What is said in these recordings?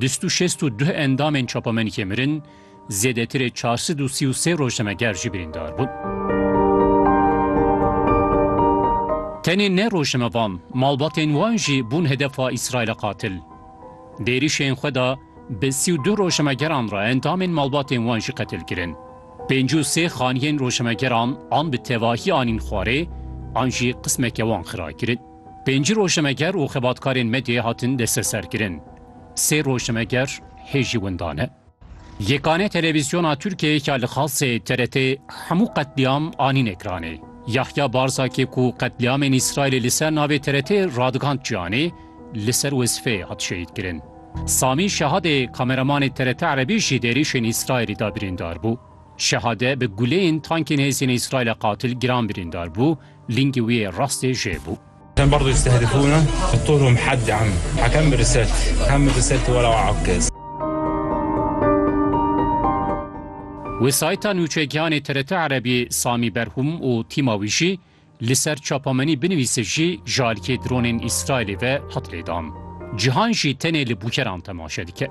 Du sed û şêst û duh endamên çapamenîkê mirin, zêdetirê çar sed û sî û sê rojnameger jî birîndar bûn. Tenê ne rojnamevan, malbatên wan jî bûn hedefa Îsraîla qatil. Di êrîşên xwe de bi sî û duh rojnamegeran re endamên malbatên wan jî qetil kirin. Pêncî û sê xaniyên rojnamegeran an bi tevahî anîn xwarê an jî qismeke wan xira kirin. Pêncî rojnameger û xebatkarên medyayê hatin desteserkirin. Sê rojnameger hê jî winda ne. Yekane televîzyona Tirkiyeyê ka li Xalsê ye TRT'ê hemû qetlîam anîn ekranê. Yahya Barzakê ku qetlîamên Îsraîlê li ser navê TRT'ê radigand ciyanê, li ser wezîfeyê hat şehîdkirin. Samî Şehadê kameramanê TRT Erebî ji êrîşên Îsraîlê de birîndar bû. Şehade bi guleyên tankên hêzên Îsraîlê qatil giran birîndar bû, Lingê wî yê rastê jê bû. Em berdu yistehedifûne qutulhûm hedd em hekem bi riset hem bi riset were wa akez. Wesayîta nûçegihanê TRT Erebî Samî Berhûm û tîma wî jî li ser çapamenî binivîse jî ji alîkê dronên Îsraîlê ve hat lêdan. Cîhan jî tenê li bûkeran temaşe dike.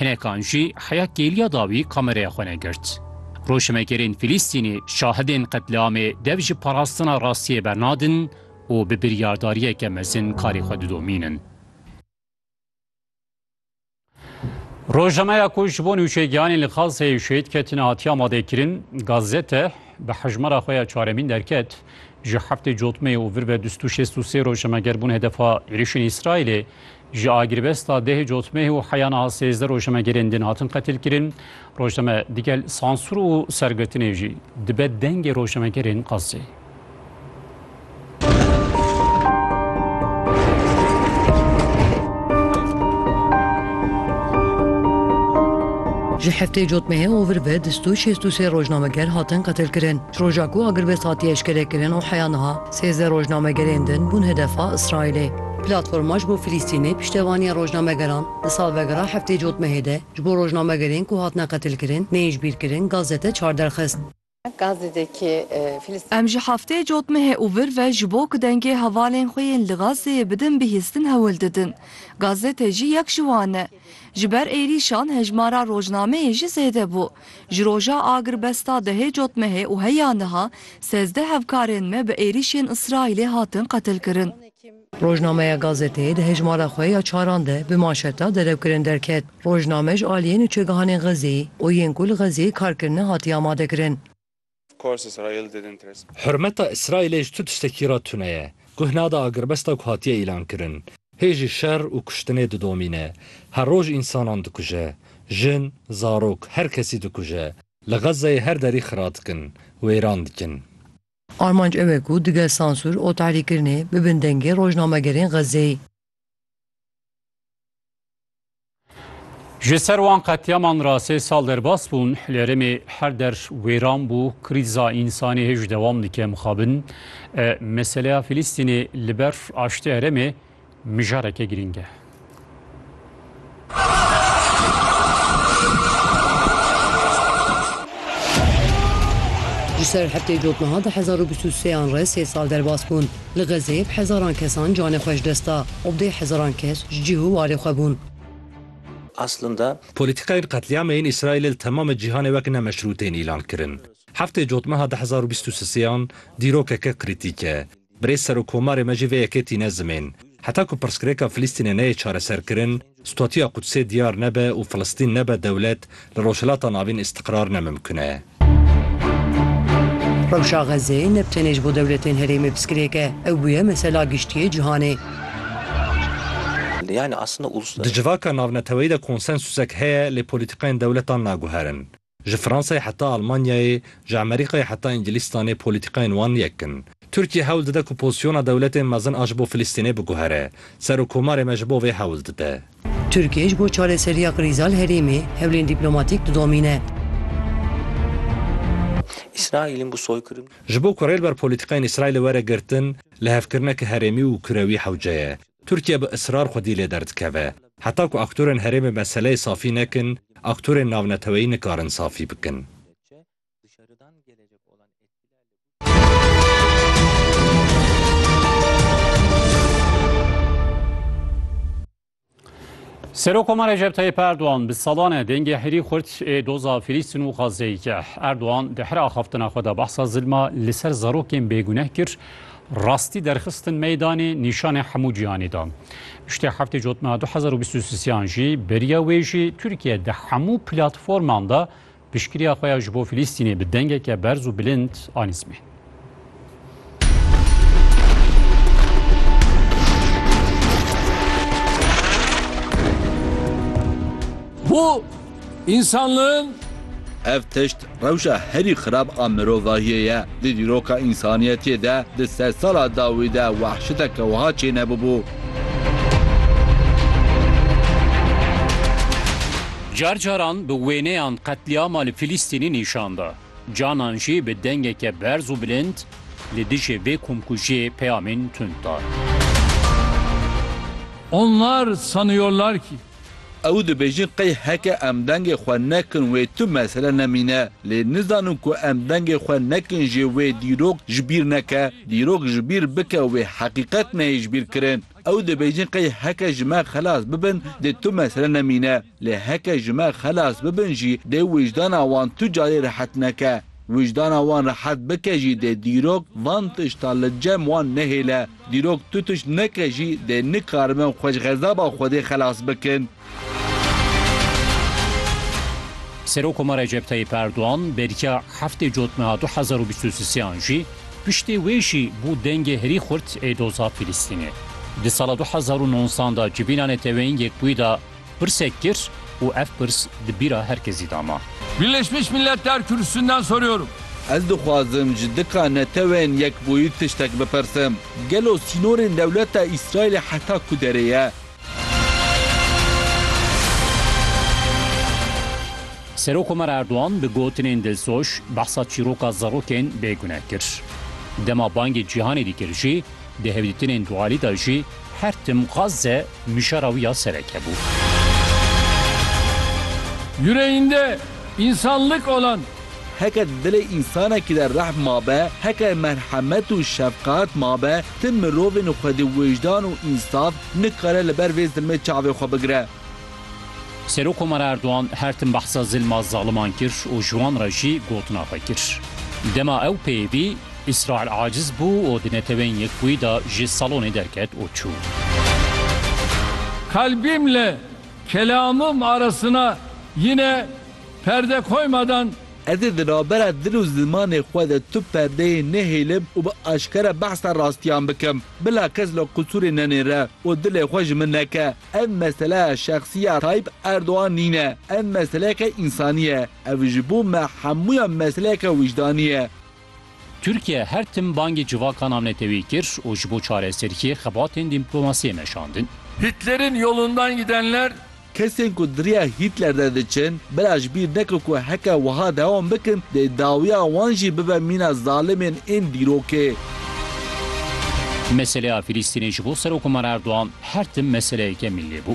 Hinekan jî heya kêliya dawî kameraya xwe negirt. Rojhimegerên Fîlîstînî şahidên qetliamê dev ji parastina rastiyê bernadin û bi biryardariyeke mezin karê xwe didomînin. Rojnameya ku ji bo nûçegihanên li Xazzeyê şehîd ketine hatiye amadekirin, Gazete, bi hejmara xwe ya çaremîn derket. Ji heftê cotmeyê û vir ve du sed û şêst û sê rojnameger bûn hedefa êrişên Îsraîlê. Ji agirbesta deh cotmeh û heya niha sêzdeh rojnamegerên din hatin qetilkirin. Rojname digel sansûr û sergirtinê jî dibe dengê rojnamegerên qasê. Ji heftê cotmehê ovir ve du sed û şêst û sê rojnameger hatin qetilkirin. Ji roja ku agirbest hatiye eşkerekirin û heya niha sêzdeh rojnamegerên din bûn hedefa Îsraîlê. Platforma ji bo Filîstînê piştevaniya rojnamegeran di salvegera heftê cotmehê de ji bo rojnamegerên ku hatine qetilkirin neyên ji bîr kirin Gazze te çar derxist. Em ji heftê cotmehê û vir ve ji bo ku dengê hevalên xwe yên li Gazzeyê bidin bihîstin hewl didin. Gazze te jî yek ji wan e. Ji ber êrîşan hejmara rojnameyê jî zêde bû. Ji roja agirbesta dehê cotmehê û heya niha sezdeh hevkarên me bi êrîşên Îsraîlê hatin qetilkirin. Rojnameya Gazete di hejmara xwe ya çaran de bi manşeta Derewkirin derket. Rojname ji aliyên û çegihanên Xezeyê û yên ku li Xezeyê kar kirine hatiye amadekirin. Hurmeta Îsraîlê ji tu tiştekî re tune ye. Guh nade agirbesta ku hatiye îlankirin. Hê jî şer û kuştinê didomîne. Her roj însanan dikuje. Jin, zarok, her kesî dikuje. Li Xezzeyê her derî xira dikin. Wêran dikin. Armanc ew e ku digel sansûr û tahrîkkirinê bibin dengê rojnamegerên Xezzeyê. Ji ser wan qetiyaman ra sê sal derbas bûn, lêrimê her der wêran bû, krîza însanî hêj dewam dike mixabin. Meseleya Filîstînê li ber aştê herêmê mijareke girîng e. Ji ser heftê cot niha di hezar û bîst û sê an re sê sal derbas bûn. Li Xezeyê bi hezaran kesan canê xwe ji dest da û bi dê hezaran kes ji cîh û warê xwe bûn. Aslında. Polîtîkayên qetlîamê yên Îsraîlê li temamê cîhanê wek ne meşrû tên îlan kirin. Heftê cot niha di hezar û bîst û sê an dîrokeke krîtîk e. Birêz Serokomarê me jî vê yekê tîne zimên, Heta ku pirsgirêka Filistînê neyê çareserkirin, statûya Qudsê diyar nebe û Filistîn nebe dewlet, li Rojhilata Navîn îstiqrar ne mimkun e. Rewşa Xezzeyê ne bi tenê ji bo dewletên herêmê pirsgirêk e, ew bûye mesela giştiyê cîhanê. Di civaka navneteweyî de konsensûsek heye lê polîtîkayên dewletan naguherin. Ji Fransayê heta Almanyayê, ji Amerîkayê heta Îngilîztanê polîtîkayên wan yek in. Tirkiye hewl dide ku pozîsyona dewletên mezin a ji bo Filistînê biguhere. Serokkomarê me ji bo vê hewl dide. Tirkiye ji bo çareseriya krîza li herêmê hewlên dîplomatîk didomîne. Ji bo ku rê li ber polîtîkayên Îsraîlê were girtin, lihevkirineke herêmî û kurewî hewce ye. Tirkiye bi israr xwedî lê derdikeve. Heta ku aktorên herêmê meseleyê safî nekin, aktorên navneteweyî nikarin safî bikin. Serokoma Recep Tayyip Erdogan bi salan e dengê herî xurt ê doza Filîstîn û Xazzeyê kir. Erdogan di her axaftina xwe de behsa zilma li ser zarokên bêguneh kir, Rastî derxistin meydanê nîşanê hemû cîhanê da. Piştî heftê cotna du hezar û bîst û sian jî beriya wê jî Tirkiye di hemû platforman da piştgiriya xwe ya ji bo Filîstînê bi dengeke berz û bilind anî zimên. Bu Însanlığın Ev tişt rewşa herî xirab a mirovahiyê ye. Di dîroka însaniyetiyê de di sed sala dawî de wehşiteke wiha çênebûbû. Car caran bi wêneyan qetlîama li Filîstînî nîşan da, canan jî bi dengeke berz û bilind li dijî vê komkujiyê peyamên tund da. Onlar sanıyorlar ki. Ew dibêjin qey heke em dengê xwe nekin wê tu mesele nemîne. Lê nizanin ku em dengê xwe nekin jê wê dîrok ji bîr neke. Dîrok ji bîr bike wê heqîqet neyê ji bîr kirin. Ew dibêjin qey heke ji me xelas bibin dê tu mesele nemîne. Lê heke ji me xelas bibin jî dê wijdana wan tu carê rehet neke. Wijdana wan rehet bike jî dê dîrok van tişta li cem wan nehêle. Dîrok tu tişt neke jî dê nikariben xwe ji xezaba Xwedê xelas bikin. Serokoma Recep Tayyîp Erdogan beriya heftê cotmeha du hezar û bîst û siseyan jî piştê wê jî bû dengê herî xurt ê doza Filistînê. Di sala du hezar û nonzdan de civîna Neteweyên Yekbûyî de Pirsek kir û ev pirs di bîra her kesî de ma. Birleşmiş Milletler Kürsüsünden soruyorum. Ez dixwazim ji dika netewên yekbûyî tiştek bipirsim. Gelo sînorên dewleta Îsraîlê heta ku derê ye? Serokkomar Erdogan bi gotinên dilsoz behsa çîroka zarokên bêgune kir. Dema bangê cîhanê dîkir jî, Di hevdîtinên dualî de jî her tim Gazze mijara wî ya sereke bû. Yüreğinde insanlık olan. Heke di dilê însanekî de rehm mabe, heke merhemet û şefqet mabe, tim mirovên û xwedî wijdan û însav nikare li ber vê zilmê çavê xwe bigire. Serok Komar Erdogan her tim behsa zilma zaliman kir û ji wan re jî gotina xwe kir. Dema ew peyivî Îsraîl aciz bû û di Neteweyên Yekbûyî de ji salonê derket û çû. Kalbimle kelamım arasına yine perde koymadan. Ez ê di navbera dil û zimanê xwe de tu perdeyê nehêlim û bi aşkere behsa rastiyan bikim. Bila kes li qusûrê nenêre û dilê xwe ji min neke. Ev meseleya şexsî ya Tayyîp Erdogan nîne. Ev meseleyeke însanî ye. Ev ji bo me hemûyan meseleyeke wijdanî ye. Tirkiye her tim bangê civaka navnetewî kir û ji bo çareseriyê xebatên dîmplomasiyê meşandin. Hitler'in yolundan gidenler. Kesên ku di riya Hitler de diçin, bira ji bîr neke ku heke wiha dewam bikin dê dawiya wan jî bibe mîna zalimên ên dîrokê. Meseleya Filîstînê ji bo Serokomar Erdogan her tim meseleyeke mîllî bû.